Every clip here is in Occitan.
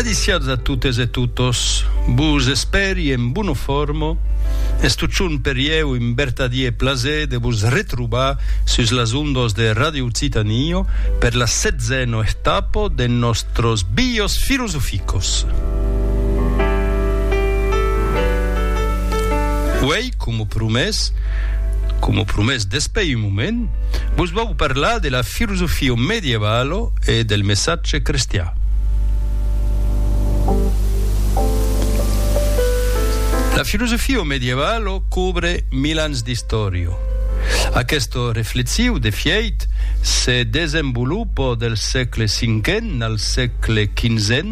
Adiciats a totes e totos, vos espèri en bona forma, es totjorn per ieu un vertadier plaser de vos retrobar sus las ondas de Radio Occitanie per la setzena etapa de nòstros Bios Filosoficos. Coma promés, coma promés despè un moment, vos vau parlar de la filosofia medievala e del messatge crestian. La filosofia medievala cobre mil ans d'istòria. Aquesta reflexiu, de fièit, se desenvolupa del sègle cinquen al sègle quinzen,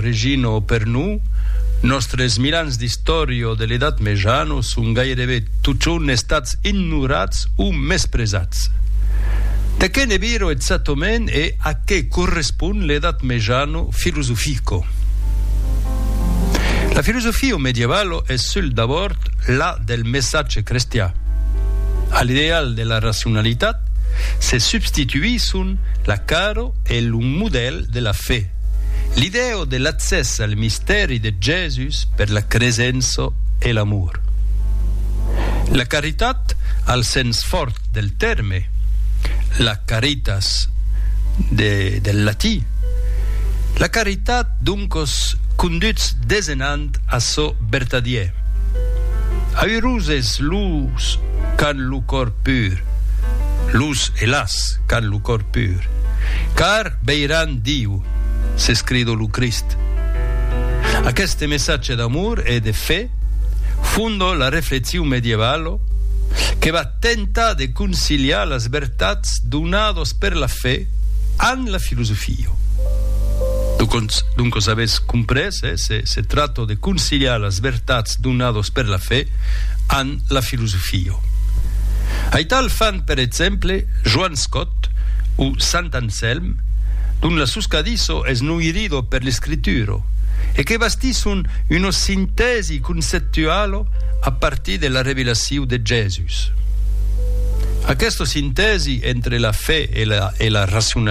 Regino Per nous, nòstres mil ans d'istòria de l'Edat Mejana son gairebe totjorn estats ignorats o mespresats. De qué ne viro exactament e a qué correspond l'Edat Mejana filosofica? La filosofia medievala es sul d'abòrd la del messatge crestian. A l'ideal de la racionalitat se substituisson la cara e lo modèl de la fe. L'idèo de l'accès al mistèri de Jèsus per la cresença e l'amor. La caritat al sens fòrt del tèrme, la caritas de del latí. La caritat doncos conduts desenhant a çò vertadier. Aüroses los qu'an lo còr pur, los e las qu'an lo còr pur, car Veiràn Diu, s'escrido lo Crist. Aqueste messatge d'amor e de fe fondo la reflexion medievalo que va tentar de conciliar las vertats donados per la fe amb la filosofia. Doncos avètz comprés, se tracta de conciliar las vertats donados per la fe amb la filosofia. Aital fan per exemple Joan Scott o Sant Anselm, dont la suscadisso es noirido per l'escritura e que bastisson una sintèsi conceptuala a partir de la revelacion de Jèsus. Aquesta sintèsi entre la fe e la racionalitat